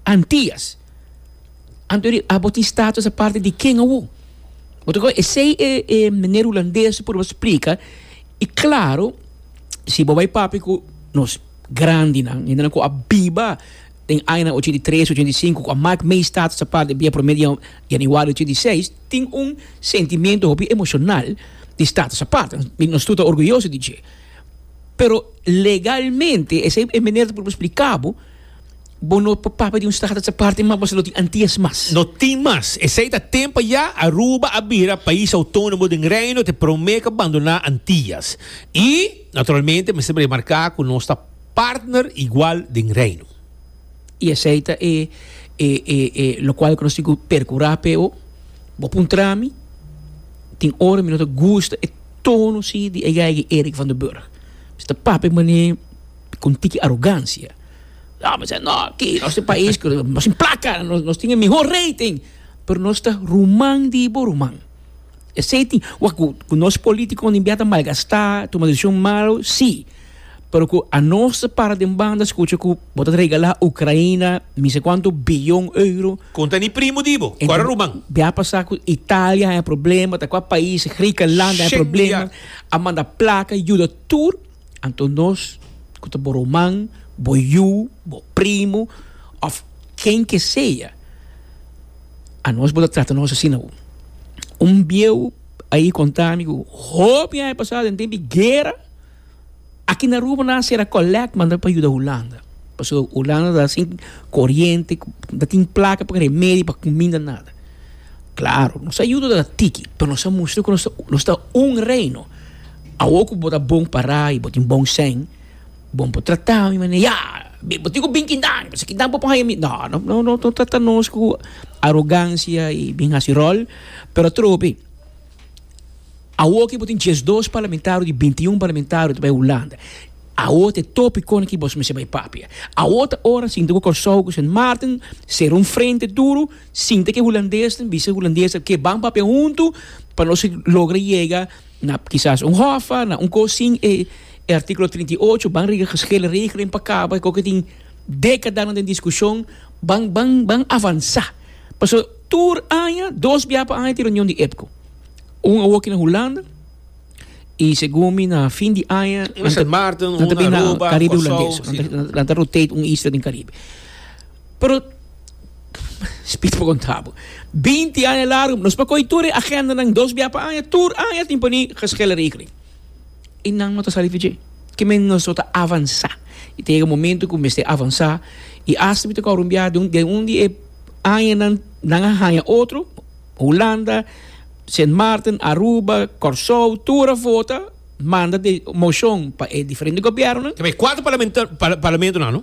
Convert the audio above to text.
Antias. Anto di abo tin status aparte di ken awu? Bo ta kor esei e e meneer Hulandes por bo splika i klaro si bo bai papia ku nos grandinan hendenan ku a biba den añanan ochenta i tres, ochenta i sinku ku a mak mei status aparte dia promé di Januario ochenta i seis tin un sentimentu hopi emoshonal di status aparte i nos tur ta orguyoso di dje. Pero legalmente esei e meneer ta por bo splika bo. Bo no por papia di un strata sa parti mas, bo sa lo tin antias mas. No tin mas. Esei ta tempo ya, Aruba a bira pais autónomo den Reino te prome cu bandona antias. Y, naturalmente, mester remarca cu nos ta partner igual den Reino. Y esei ta e e e e locual cu nos tin cu percura pe ho. Bo puntra mi, tin ora mi no ta gusta e tono si di Eiga Eiga Erik van den Burg. Mi ta papia mane. cu un tiki arogancia. No, mi no, aquí, nos tin pais, nos tin placa, nos, nos tin el mejor rating. Pero nos ta ruman di bo ruman. Esey tin, wak, cu, cu nos politico nin bia ta malgasta, tuma decision malo, si. Pero cu anos ta para den banda scucha cu bo ta regala Ucraina mi sa cuanto billon euro. Con ta ni primo di bo, cu ara ruman. Bia pasa cu Italia haya problema, ta cua pais, Grikenland haya problema, a manda placa, yuda tur. Anto nos cu ta bo ruman, bo yu, bo primo of ken ke sea, anos bo ta trata nos asina bo. Un bieu ayi conta mi cu hopi aña pasa den tempi guera aki na Aruba nan a cera collect manda pa yuda Hulanda pasobra Hulanda ta sin coriente, no tin placa pa remedi pa cuminda nada. Claro nos a yuda tiki pero nos a mustra cu nos ta un reino. Awor cu bo ta bon para y bo tin bon sèn, bo por trata mi manera, Ya! Bo tin cu bin kindan, si kindan por haya mi. No, no, no trata nos cu arogancia y bin haci rol. Pero atro be, awor cu bo tin diesdos parlamentario di bintiun parlamentario ta bay Hulanda, awor ta e topi con ki bos mester bay papia. Awor ta ora sinti cu Kòrsou, cu Sint Maarten cera un frente duro, sinti cu e Hulandes, bisa e Hulandesnan, ke ban papia huntu pa nos logra yega. Na kisas un hofa, na un kos sin e e artíkulo trinta i ocho ban riga geshele regelen pa kaba e kos ku tin dékadanan den diskushon, ban ban ban avansá. Pasobra tur aña, dos bia pa aña tin reunion di EPCO. Un awoki na Hulanda i segun mi na fin di aña Sint Maarten, un na Aruba, Kòrsou, si. nan ta rotate un isla den Karibe. Pero, Spitz por kontrá bo, binti aña largu nos por kohe tur e agendanan dos bia pa aña, tur aña tin por ni geschillen rekeling i nan no ta sali fitje. Ke men nos no ta avansá i ta yega momento ku mester avansá i asta mi ta kò rumbiá den un di e añanan nan a haña otro, Hulanda, Sint Maarten, Aruba, Kòrsou, tur a vota manda den moshon pa e diferente gobièrnunan. Ke men e kuater parlamento nan no.